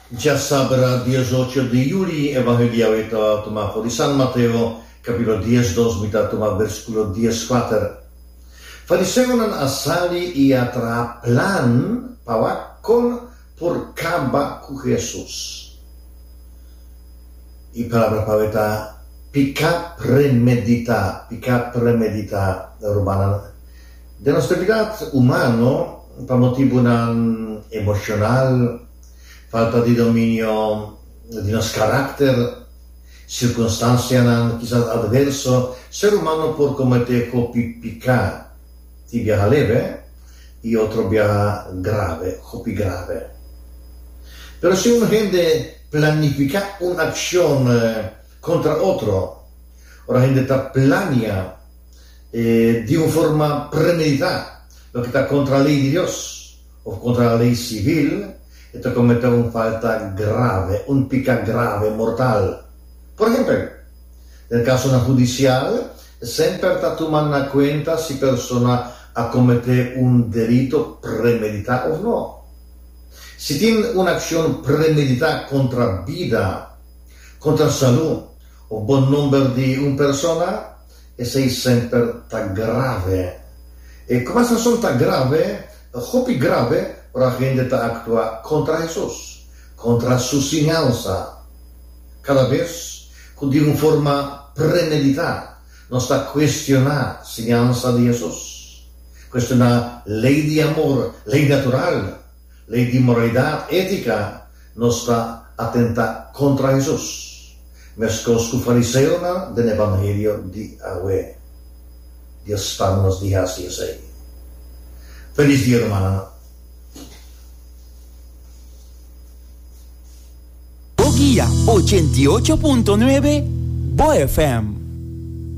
Dja sabra diesocho di yuli e baño di Yahweh ta tuma for di San Mateo, capítulo dies dos, mi ta tuma versículo dies kuater. Fariseonan a sali i a traha plan pa wak kon por kaba ku Hesus. E palabra pabia ta piká premeditá, piká premeditá, rumannan. Den nos debilidad humano, pa motibunan emocional, falta di dominio di nos caracter, circunstancianan kisas adverso, ser humano por comete hopi pica, tin biaha leve y otro biaha grave, hopi grave. Pero si un hende planifica un accion contra otro, ora hende ta plania, di un forma premeditá loke ta kontra lei di Dios òf kontra lei sivil, e ta kometé un falta grave, un piká grave, mortal. Por ehèmpel, den kasonan hudisial, e semper ta tuma na kuenta si persona a kometé un delito premeditá òf no. Si tin un akshon premeditá kontra bida, kontra salú òf bon nòmber di un persona, Esei semper ta grave. E cumasacion ta grave, ta hopi grave ora hende ta actua contra Hesus, contra Su siñansa. Cada bes cu di un forma premedita nos ta cuestiona siñansa di Hesus, cuestiona ley di amor, ley natural, Lei di moralidat étika nos ta atentá kontra Hesus, meskos ku fariseonan den e evangelio di awe. Dios pama nos di hasi esei. Felis dia rumannan. Bo guia ochenta y ocho punto nuebe, Bo FM.